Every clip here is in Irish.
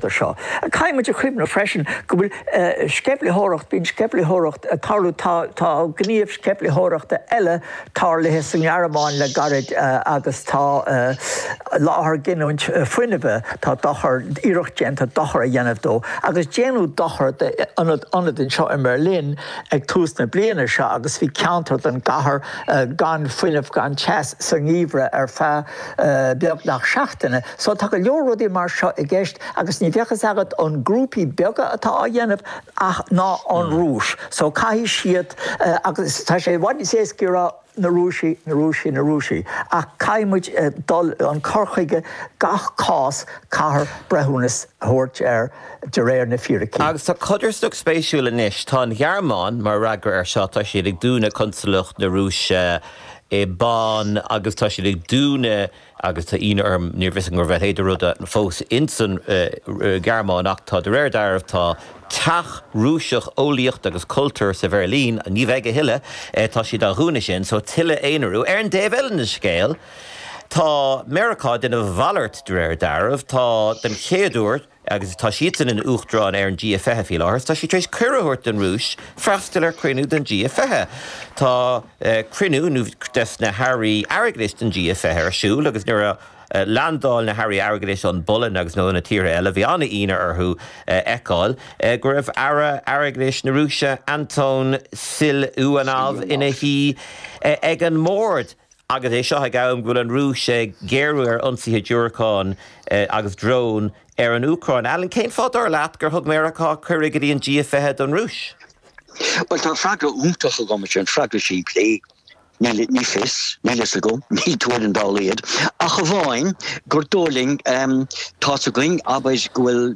do seo. Caithfidh muid a chuimhneamh freisin go bhfuil sceimhlitheoireacht, bíonn sceimhlitheoireacht ag tarlú, tá tá gníomh sceimhlitheoireachta eile tarlaithe sa nGearmáin le gairid agus tá láthair giniúint fuinnimhe, tá dochar, iarracht déanta dochar a dhéanamh dó agus déanadh dochar d'ionad ionad anseo i mBerlin ag tús na bliana seo agus bhí ceantar don gcathair gan fuinneamh, gan teas sa ngeimhreadh ar feadh beagnach seachtaine. So tá go leor rudaí mar seo i gceist agus ní bheadh fhios agat an grúpaí beaga atá á dhéanamh ah nó an Rúis. So caithfidh siad agus tá sé i bhfad níos éasca a rá na Rúisigh, na Rúisigh, na Rúisigh ach caithfidh muid dul an cur chuige gach cás caithfear breithiúnas a thabhairt air de réir na fíricí. Agus tá codarsnacht spéisiúil anois, tá an Ghearmáin mar fhreagra air seo, tá siad ag dúnadh consalacht na Rúise i Bonn agus tá siad ag dúnadh, agus tá ionadh orm, níorbh fhios agam go raibh a leithéid de rud fós insan Ghearmáin, ach tá, de réir dealraimh, tá teach Rúiseach eolaíocht agus cultúir sa Bheirlín, ní bheidh a thuilleadh, tá siad á dhúnadh sin, so tuilleadh aonarú. Ar an dtaobh eile den scéal, tá Meiriceá, déanamh a mhalairt, de réir dealraimh, tá, den chéad uair, Agus tá siadsan ina Uachtarán ar an G20 faoi láthair, tá siad tar éis cuireadh a thabhairt don Rúis freastal ar chruinniú den G20. Tá cruinniú de na hairí airgeadais den G20 ar siúl agus nuair a leandáil na hairí airgeadais ón bPolainn agus ó na tíortha eile, bhí an-ionadh orthu a fheiceáil go raibh Aire Airgeadais na Rúise, Anton Siluanov, ina shuí ag an mbord. Agus é seo ag am go bhfuil an Rúis ag géarú ar ionsaithe diúracán agus drón ar an Úcráin, Alan, cén fáth, dar leat, gur thug Meiriceá cuireadh go dtí an G20 don Rúis? Bhuel, tá freagra iontach agam ar sin, freagra simplí. Níl fios, níl fhios agam, níl tuairim dá laghad, ach amháin gur dóigh linn, tá's againn, abair, go bhfuil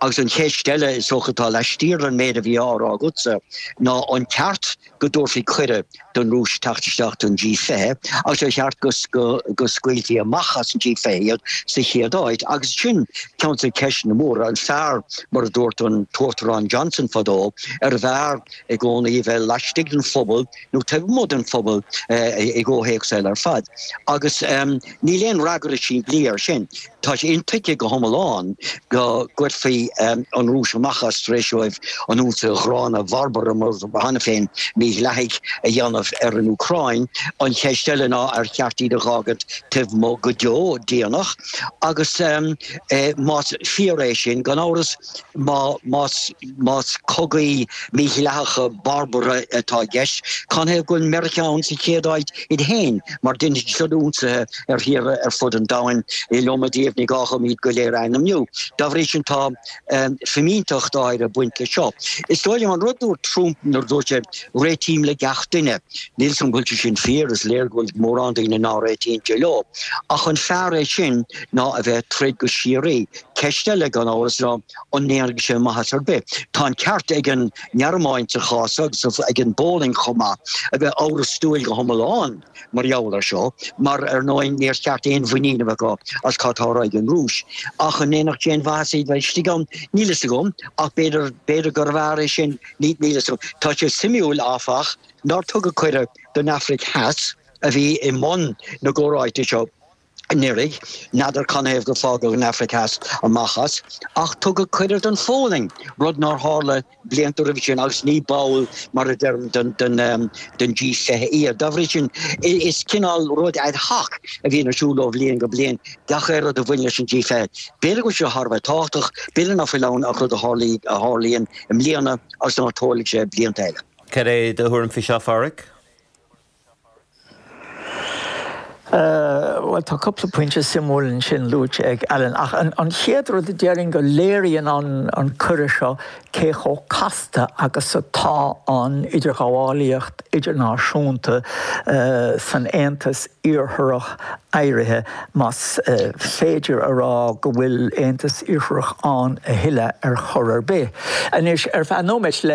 Agus an cheist eile is dócha atá laistiar den méid a bhí á rá agatsa ná an ceart go dtabharfaí cuireadh don Rúis teacht isteach don G20 agus ar cheart go scaoilfí amach as an G20 iad sa chéad áit? Agus sin ceann de na ceisteanna móra. An fearr, mar a dúirt an tUachtarán Johnson fadó, arbh fhearr i gcónaí a bheith laistigh den phuball nó taobh amuigh den phuball i gcomhthéacs eile ar fad? Agus níl aon fhreagra simplí air sin. Tá sé intuigthe go hiomlán go gcuirfí an Rúis amach as tar éis dóibh an fogha gránna barbartha, mar a dúirt cheana féin mídhleathaigh, a dhéanamh ar an Úcráin. An cheist eile ná ar cheart iad a dh'fhágaint taobh amuigh go deo deoineach? Agus más fíor é sin, gan amhras, Más cogaí mídhleathacha barbartha atá i gceist, canathaobh go bhfuil Meiriceá ann sa chéad áit iad féin mar dheineadar siúd ionsaithe ar thíortha ar fud an domhain in iliomad díobh ní gá dhom iad go léir a ainmniú. Dá bhrí sin tá fimínteacht áirithe ag baint leis seo. Is dóigh liom an rud dúirt Trump nuair a dúirt sé réitím le gach duine. Níl fhios agam an bhfuil sé sin fíor, is léir go bhfuil mórán daoine ná réitíonn sé leo. Ach an fearr é sin ná a bheith ag troid go síoraí Ceist eile, gan amhras, ná an ndéanfadh sé maitheas ar bith. Tá an ceart ag an nGearmáin sa chás seo, agus ag an bPólainn chomh maith, a bheith amhrastúil go hiomlán mar gheall air seo, mar ar ndóigh níor cheart aon mhuinín a bheith acu as cad tá ar aigne ag an Rúis. Ach an ndéanfadh sé aon mhaitheas iad bheith istigh ann? Níl a fhios agam, ach b'fhéidir, b'fhéidir gurbh fhearr é sin, níl a fhios agam. Tá sé suimiúil, áfach, nár tugadh cuireadh don Afraic Theas, a bhí i mbun na gcomhráite seo, anuraidh, n'fheadar canathaobh gur fágadh an Afraic Theas as, amach as, ach tugadh cuireadh don Pholainn, rud nár tharla blianta roimhe sin agus ní ball, mar a deirim, den, den G fiche iad. Dá bhrí sin, is cineál rud ad hoc a bhíonn ar siúl ó bhliain go bliain gach aon rud a bhaineann leis an G fiche. B'fhéidir go bhfuil sé thar a bheith tábhachtach, b'fhéidir ná fuil ann ach rud a tharlaíonn i mbliana agus ná tarlóidh sé blianta eile. Cad é do thuairim faoi seo, a Pháraic? Bhuel, tá cúpla pointe suimiúil ansin luaite ag Alan, ach an chéad rud a déarfainn go léiríonn an cuireadh seo cé chomh casta agus atá an idirghabhálaíocht idirnáisiúnta san Aontas Iartharach éirithe, más féidir a rá go bhfuil Aontas Iartharach ann a thuilleadh ar chor ar bith. Anois, ar feadh nóiméid, le.